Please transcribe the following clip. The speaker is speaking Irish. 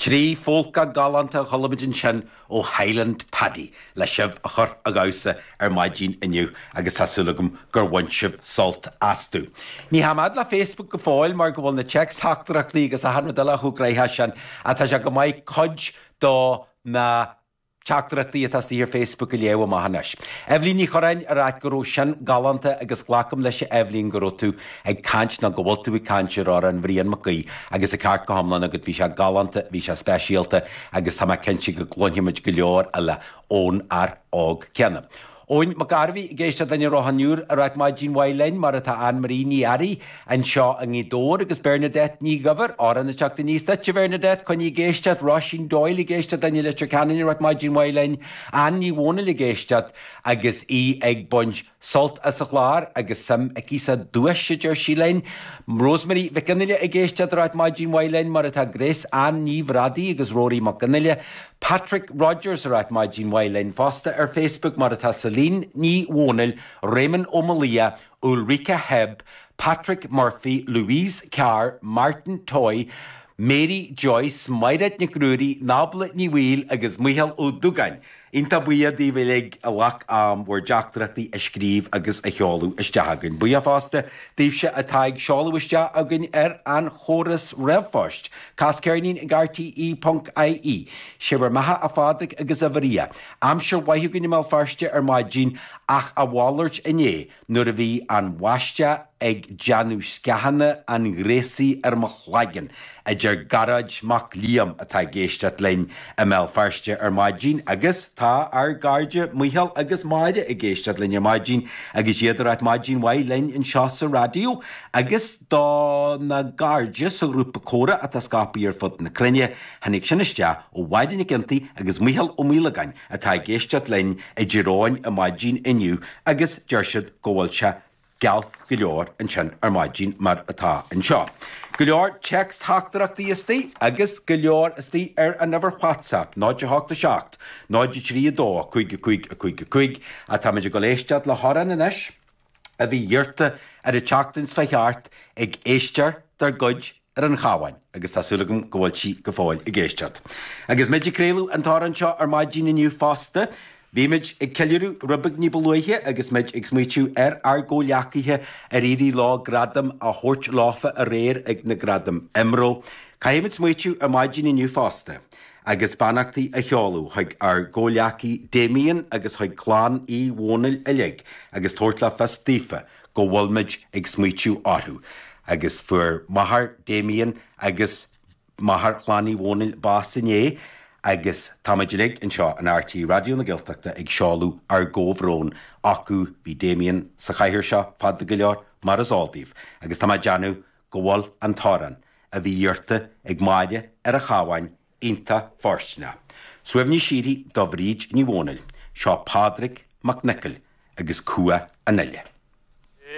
Trí pholca galánta a chuala muid ansin ó Highland Paddy le sibh a chur a dhamhsa ar maidín inniu agus tá súil agam gur bhain sibh sult astu. Ní théim fhad le Facebook go fóill mar go bhfuil na téacs-theachtaireachtaí agus achan rud eile chomh gnaitheach sin ach tá sé chomh maith cuid do na Teachtaireachtaí atá istigh ar Facebook a léamh amach anois. Eibhlín Ní Churráin ag ráit go raibh sin galánta agus glacaim leis a Eibhlín go raibh tú ag caint nó go bhfuil tú ag caint ar amhrán Bhrian Mac Aoidh agus an ceart go hiomlán agat bhí sé galánta bhí sé speisialta agus tá mé cinnte go gcluinfimid go leor eile ón fhear óg céanna. Eoin Mac Gairbhigh ag éisteacht linn i Ráth an Iúir ag ráit maidin mhaith linn, mar atá Ann Marie Ní Fhearraigh anseo i nGaoth Dobhair agus Bernadette Ní Dhuibhir, amhrán ag teacht aníos duit, a Bhernadette, coinnigh ag éisteacht, Róisín Doyle ag éisteacht linn i Leitir Ceanainn ag ráit maidin mhaith linn, Ann Ní Dhomhnaill ag éisteacht agus í ag baint sult as an chlár agus suim aici sa duais, a deir sí linn, Rosemary Mhic Fhionnghaile ag éisteacht ag ráit maidin mhaith linn, mar atá Grace Ann Ní Bhradaigh agus Rory Mac Fhionnghaile. Patrick Rodgers ag ráit maidín mhaith linn fosta ar Facebook, mar atá Celine Ní Dhomhnaill, Réamonn Ó Máille, Ulrika Hebb, Patrick Murphy, Louise Carr, Martin Toy, Mary Joyce, Maighréad Nic Ruairí, Nábla Ní Bhaoill agus Micheál Ó Dugáin. Iontach buíoch daoibh uilig a ghlac am bhur dteachtaireachtaí a scríobh agus a sheoladh isteach againn. Buíoch fosta daoibhse atá ag seoladh isteach againn ar an chóras ríomhphoist. Cas ceirnín ag RTÉ.ie. 'Sé bhur mbeatha a Phádraig agus a Mharia. Aimsir mhaith againn i mBéal Feirste ar maidin ach a mhalairt inné nuair a bhí an bháisteach ag déanamh sceana an ghréasaí ar mo chlaigeann, a deir Gearóid Mac Liam atá ag éisteacht linn i mBéal Feirste ar maidin agus tá ár gcairde Micheál agus Máire ag éisteacht linn ar maidin agus iad ag ráit maidin mhaith linn anseo sa raidió agus Dona gcairde sa ghrúpa Comhrá atá scapaithe ar fud na cruinne, tháinig sin isteach ó Mháire Nic Iontaigh agus Micheál Ó Maolagáin atá ag éisteacht linn i dTír Eoghain ar maidin inniu agus deir siad go bhfuil sé geal go leor ansin ar maidin mar atá anseo. Go leor téacs theachtaireachtaí istigh agus go leor istigh ar an uimhir WhatsApp 087 032 55 55 ach táimid ag dul éisteacht le hamhrán anois. a bhí iarrta ar an tseachtain seo a chuaigh thart ag éisteoir dár gcuid ar an Chabhán agus tá súil agam go bhfuil sí go fóill ag éisteacht. Agus muid ag craoladh an t-amhrán seo ar maidín inniu fosta, bhí muid ag ceiliúradh rud beag ní ba luaithe agus muid ag smaoitiú ar ár gcomhleacaithe ar éirigh leo gradam a thabhairt leofa aréir ag na gradaim IMRO. Caithfimid smaoitiú ar maidín inniu fosta. agus beannachtaí a sheoladh chuig ár gcomhleacaí Damien agus chuig clann Uí Dhónaill uilig agus tabhairt le fios daofa go bhfuilimid ag smaoitiú orthu agus fuair máthair Damien agus máthair chlann Uí Dhónaill bás inné agus táimid uilig anseo in RTÉ Raidió na Gaeltachta ag seoladh ár gcomhbhrón acu bhí Damien sa chathaoir seo fada go leor mar is eol daoibh agus tá mé ag déanamh go bhfuil an t-amhrán a bhí iarrta ag Máire ar an Chabhán iontach fóirsteanach. Suaimhneas síoraí do Bhríd Ní Dhónaill. Seo Pádraig Mac Niocaill agus Cumha an Fhile.